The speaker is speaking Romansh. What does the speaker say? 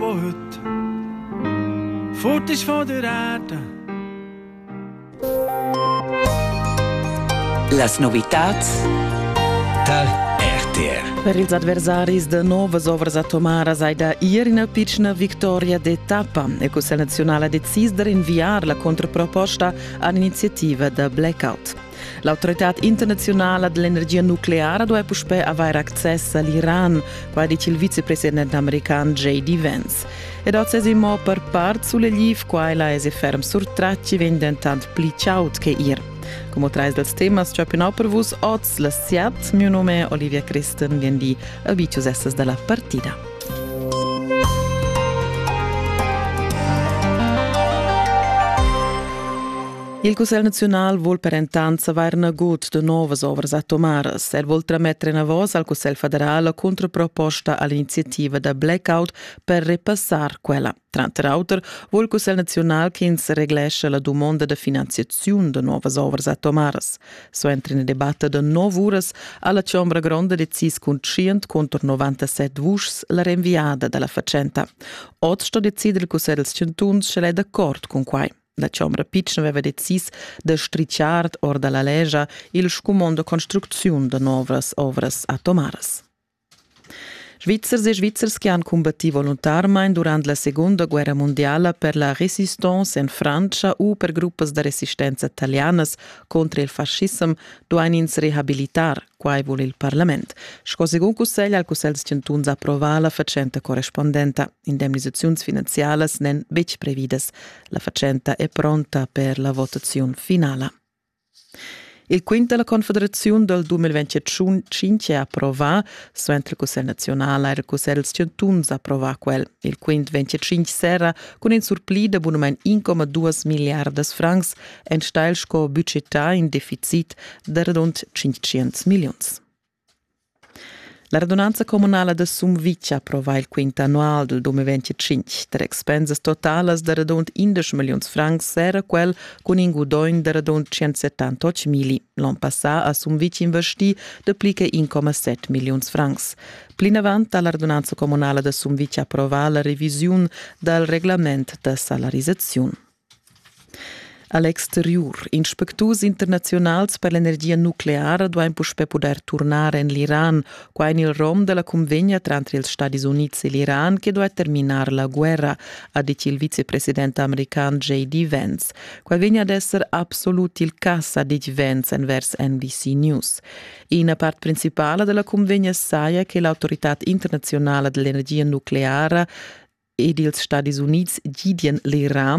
Put. Fot is van de rata. Las novitats dal RTR. Per ils adversaris de novas ovras atomaras hai da ir ina piccina victoria d'etappa e co selezionala decis de rinviar la controproposta all'iniziativa da blackout. L'autoritad internaziunala dell'energia nucleara duai puspè avair access a l'Iran, quai dice il vicepresident american J.D. Vance. Ed oz es imo per part sulegliv, quaila es e ferm surtratti vegn dentant pli chaud che ir. Como trais dels temas ciappinau per vus oz la siat, mio nome è Olivia Christen, vien di abicius essas dalla partida. Il Cussegl naziunal vul per entant savair nagut de novas ovras atomaras. El vul trametter enavos al Cussegl federal la contraproposta all'iniziativa da blackout per repassar quella. Tranter auter vul il Cussegl naziunal ch'ins reglesce la dumonda de finanziaziun de novas ovras atomaras. So entra in debatte de nov uras alla Chombra Gronda decis cun 100 contro 97 vuschs la renviada dalla facenta. Oz sto decider il Cussegl 100 sche è d'accord cun quai. La chombra pitschna veva decis da stritschar or dalla legia il scumond da construcziun da novras ovras atomaras. Svizzers e Svizzers che han combattì voluntarmain durant la Seconda Guerra mondiala per la resistance en Francia u per gruppas da resistenza talianas contro il fascism duain ins rehabilitar, quai vul il parlament. Sco segun cussegl al cussegl chantuns approva la fatschenta correspondenta. indemnisaziuns finanzialas n'èn betg previdas. La fatschenta è pronta per la votaziun finala. Il quint della Confederazione dal 2025 è approvà, suenter il Cussegl nazionale e il Cussegl chantuns approvà quel. Il quint 25 serra cun in surpli da bunament 1,2 miliardas francs enstagl sco budgetà in deficit da radund 500 milliuns. La radunanza communala da Sumvitg approva il quint annual del 2025. Ter expensas totalas da radund 11 milliuns francs era quel cun in gudogn da radund 178 mili. L'on passà ha Sumvitg investì de pli che 1,7 milliuns francs. Plinavant ha la radunanza communala da Sumvitg approvà la revisiun dal reglament da salarisaziun. A l'exteriur, inspecturs internaziunals per l'energia nucleara duain puspè pudair turnar en l'Iran, qua en il rom da la cunvegna tranter ils Stadis Unids e l'Iran che duai terminar la guerra, ha dit il vicepresident american J.D. Vance. Qua vegn ad esser absolut il cas, ha dit Vance envers NBC News. Ina part principala della convegna saja che l'autorità internazionale dell'energia nucleare ed ils Stadis Units gidien l'Iran